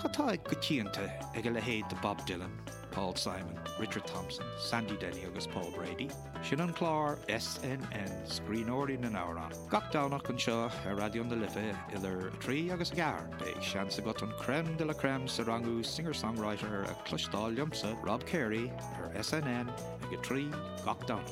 Cad tá go coitianta ag a leithéid de Bob Dylan, Paul Simon, Richard Thompson, Sandy Denny agus Paul Brady? Sin an clár SNN Scríbhneoirí na nAmhrán. Gach Domhnach anseo ar Raidió na Life idir a 3 agus a 4 beidh seans agat an crème de la crème sa rangú singer-songwriter a cloisteáil liomsa Rob Carey ar SNN ag a 3 gach Domhnach.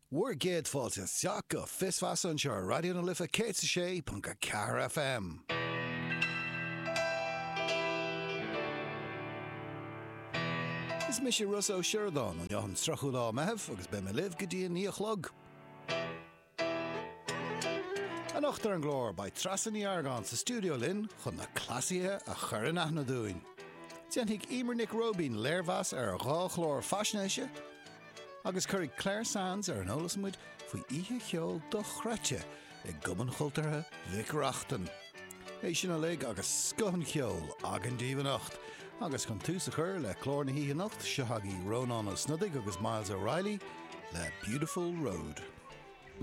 Bhur gcéad fáilte isteach go Fios Feasa anseo ar Raidió na Life 106.4 FM. Is mise Rossa Ó Sioradáin, an dara lá Meitheamh agus beidh mé libh go dtí a naoi a chlog. Anocht ar an gclár beidh Treasa Ní Argáin sa stiúideo linn chun na cleasaithe a chur in aithne dúinn. Déanfaidh Emer Nic Róibín léirmheas ar dhá chlár faisnéise, Agus cuirfidh Clare Sands ar an eolas muid faoi oíche cheoil dochreidte i gCumann Chultúrtha Mhic Reachtain. É sin uilig agus scoth an cheoil againn daoibh anocht. Agus chun tús a chur le clár na hoíche anocht, seo agaibh Rónán Ó Snodaigh agus Myles O'Reilly le Beautiful Road.